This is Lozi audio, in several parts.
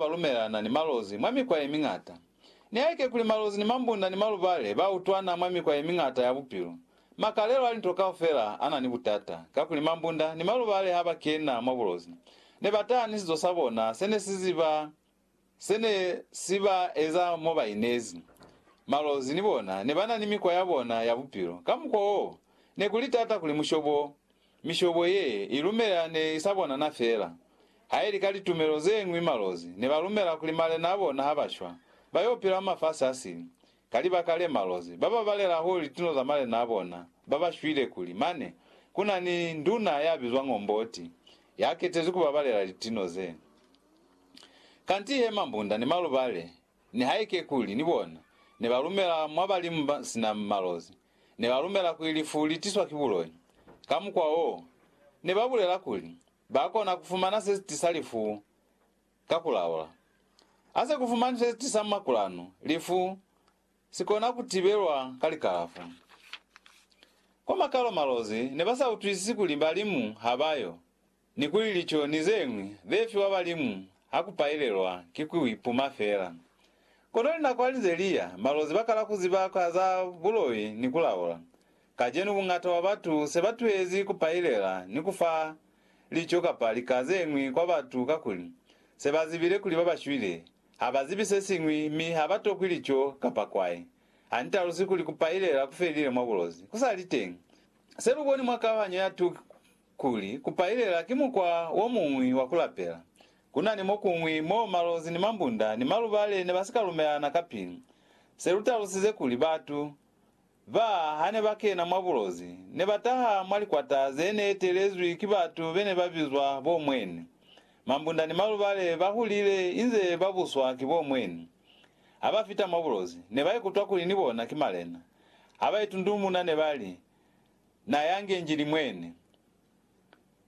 ba lumelana ni malozi mwa mikwa ye miñata. Nihaike kuli malozi ni mambunda ni malubale ba utwana mwa mikwa ye miñata ya bupilo, makalelo a linto kaufela a na ni butata, kakuli mambunda ni malubale ha ba kena mwa bulozi, ne ba taha ni sizo sa bona se ne si ziba se ne si ba eza mo ba inezi. Malozi ni bona ne ba na ni mikwa ya bona ya bupilo, ka mukwa woo ne ku li tata kuli mushobo Mishobo ye i lumela ne i sa bonana feela. Haili ka litumelo ze ñwi malozi ne ba lumela kuli malena a bona ha ba shwa, ba y'o pila mwa mafasi a sili. Ka libaka le, malozi ba ba balela hahulu lituno za malena a bona ba ba shwile kuli mane ku na ni nduna ya bizwang Omboti ya ketezwi ku ba balela lituno ze. Kanti he mambunda ni malubale Nihaike kuli ni bona ne ba lumela mwa balimu ba sina malozi, ne ba lumela kuli lifu li tiswa ki buloi. Ka mukwa wo, ne ba bulela kuli ba kona ku fumana se si tisa lifu ka ku laula. Ha se ku fumanwi se si tisa makulanu, lifu si kona ku tibelwa ka likalafo. Kwa makalo malozi ne ba sa utwisisi kuli balimu ha ba yo. Ni kuli lico ni zeñwi ze fiwa balimu ha ku pailelwa ki ku ipuma fela. Kono linako ha li ze li ya, malozi ba kala ku ziba ka za buloi ni ku laula. Kacenu bungata bwa batu se ba tuhezi ku pailela ni ku fa lico kapa lika zeñwi kwa batu kakuli se ba zibile kuli ba ba shwile ha ba zibi se siñwi mi ha ba tokwi lico kapa kwai. Ha ni talusi kuli ku pailela ku felile mwa bulozi ku sa li teñi. Se lu boni mwa kauhanyo ya 2. Kuli kupailela ki mukwa wo muñwi wa ku lapela. Ku na ni mo kuñwi mo malozi ni mambunda ni malubale ne ba si ka lumelana ka pilu. Se lu talusize kuli batu ba ha ne ba kena mwa bulozi, ne ba taha mwa likwata ze ne etelezwi ki batu be ne ba bizwa bo mweni. Mambunda ni malubale ba hulile inze ba buswa ki bo mweni. Ha ba fita mwa bulozi, ne ba ikutwa kuli ni bona ki malena. Ha ba itundumuna ne ba li, Na yange Njili mwene.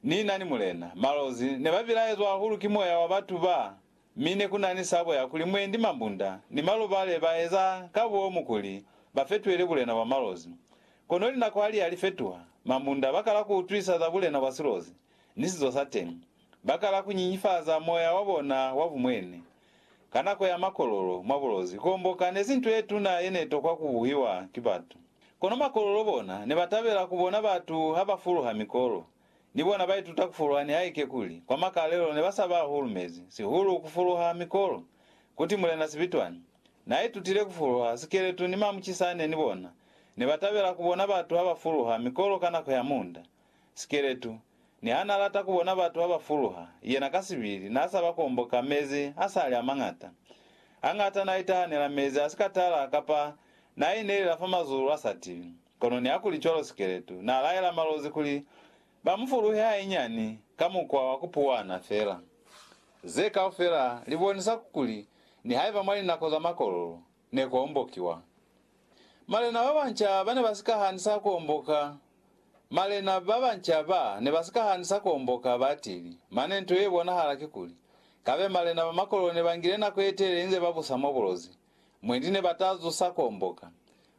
Ni na ni Mulena. Malozi ne ba bilaezwa hahulu ki moya wa batu ba, mi ne ku na ni sabo ya kuli mwendi mambunda ni malubale ba eza ka bomu kuli ba fetuele bulena bwa malozi. Kono linako ha li ya li fetuha, mambunda ba kala ku utwisa za bulena bwa silozi ni sizo sa teñi. Ba kala ku nyinyifaza moya wa bona wa bumwene. Ka nako ya makololo mwa bulozi, kuomboka nezi nto yetuna yenetokwa kubuhiwa ki batu. Kono makololo bona nebatabela kubona batu habafuluha mikolo. Ni bona baituta kufuluha nihaike kuli kwa makalelo nebasaba hahulu mezi, sihulu kufuluha mikolo. Kuti Mulena Sibitwani naaitutile kufuluha sikeletu ni mamucisane ni bona nebatabela kubona batu habafuluha mikolo ka nako ya munda. Sikeletu, niha n'a lata ku bona batu ha ba fuluha, yena ka sibili n'a sa ba komboka mezi a sa li a mañata. Hañata n'a itahanela mezi a si ka tala kapa n'a inelela fa mazulu a sa tibi. Kono nihakulicwalo Sikeletu n'a laela malozi kuli ba mu fuluhe hainyani ka mukwa wa ku puwana fela. Ze kaufela li bonisa kuli nihaiba mwa linako za makololo, ne ku ombokiwa. Malena ba banca ba ne ba si ka hanisa ku omboka. Malena ba banca ba ne ba si ka hanisa ku omboka batili, mane nto ye bonahala kikuli, kabe malena ba makololo ne ba ngile nako ye telele inze ba busa mwa bulozi, mwendi ne ba ta zusa ku omboka.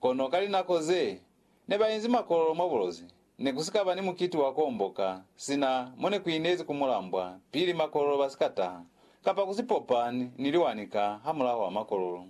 Kono ka linako ze ne ba inzi makololo mwa bulozi, ne ku si ka ba ni mukiti wa ku omboka sina mo ne ku inezi ku mulambwa pili makololo ba si ka taha, kapa ku si popa ni liwani ka hamulaho wa makololo.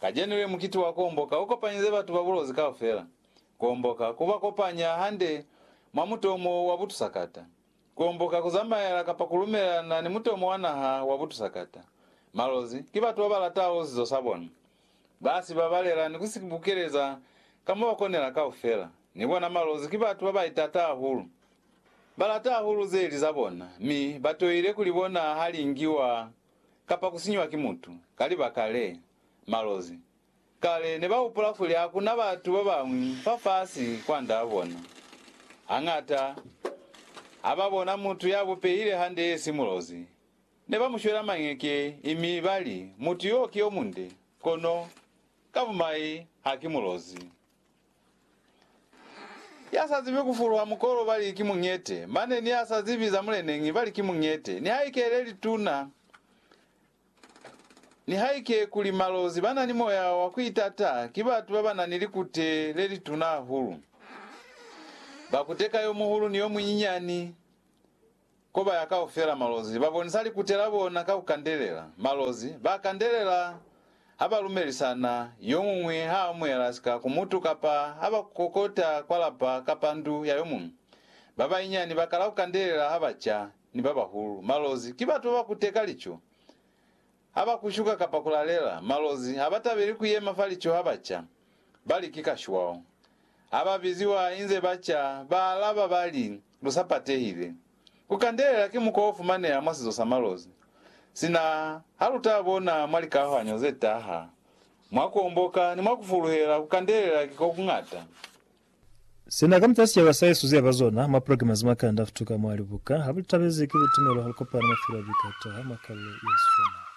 Kacenu le mukiti wa ku omboka u kopanyize batu ba bulozi kaufela. Ku omboka ku ba kopanya hande mwa mutomo wa butusakata. Kuomboka, kuzamaela kapa kulumelelana ni mutomo wa naha wa butusakata. Malozi ki batu babalataho zizo sabona. Basi babalela ni kusibukeleza ka mobakonela kaufela. Ni bona malozi ki batu babaitata hahulu. Balata hahulu zeli zabona, mi batoile kulibona haliingiwa kapa kusinyiwa ki mutu. Ka libaka le, malozi Kale ne ba hupula kuli ha ku na batu ba bañwi fafasi kwandaa bona. Hañata, ha ba bona mutu ya bupehile hande ye si mulozi, ne ba mu shwela mañeke mi ba li, Mutu yo ki yo munde, kono ka bumai ha ki mulozi. Ya sa zibi ku fuluha mukolo ba li ki muñete, mane ni ya sa zibi za muleneñi ba li ki muñete, nihaike le lituna Nihaike kuli malozi ba na ni moya wa ku itata ki batu ba ba na ni likute le lituna hahulu. Ba kuteka yo muhulu ni yo munyinyani, ko ba ya kaufela. Malozi ba bonisa likute la bona ka ku kandelela. Malozi ba kandelela ha ba lumelisana, yo muñwi ha amuhela sika ku mutu kapa ha ba kokota kwa lapa kapa ndu ya yo muñwi. Ba banyinyani ba kala ku kandelela ha ba ca, ni ba bahulu. Malozi ki batu baba kuteka lico ha ba kushuka kapa kulalela. Malozi ha ba tabeli kuyema fa lico ha ba ca, ba li ki kashwao. Ha ba biziwa inze ba ca, ba alaba ba li, Lu sa patehile. Ku kandelela ki mukwa o fumaneha mwa sizo sa malozi. Sina ha lu ta bona mwa likahuhanyo ze taha, mwa ku omboka ni mwa ku fuluhela, ku kandelela ki ko ku ñata. Sina ka mutala sicaba sa Yesu ziaba zona mwa poloke mazi mwa kanda futuka mwa libuka, habulitabezi ki butumelo halukopana mafilo a bikataha mwa kalule yeswanao.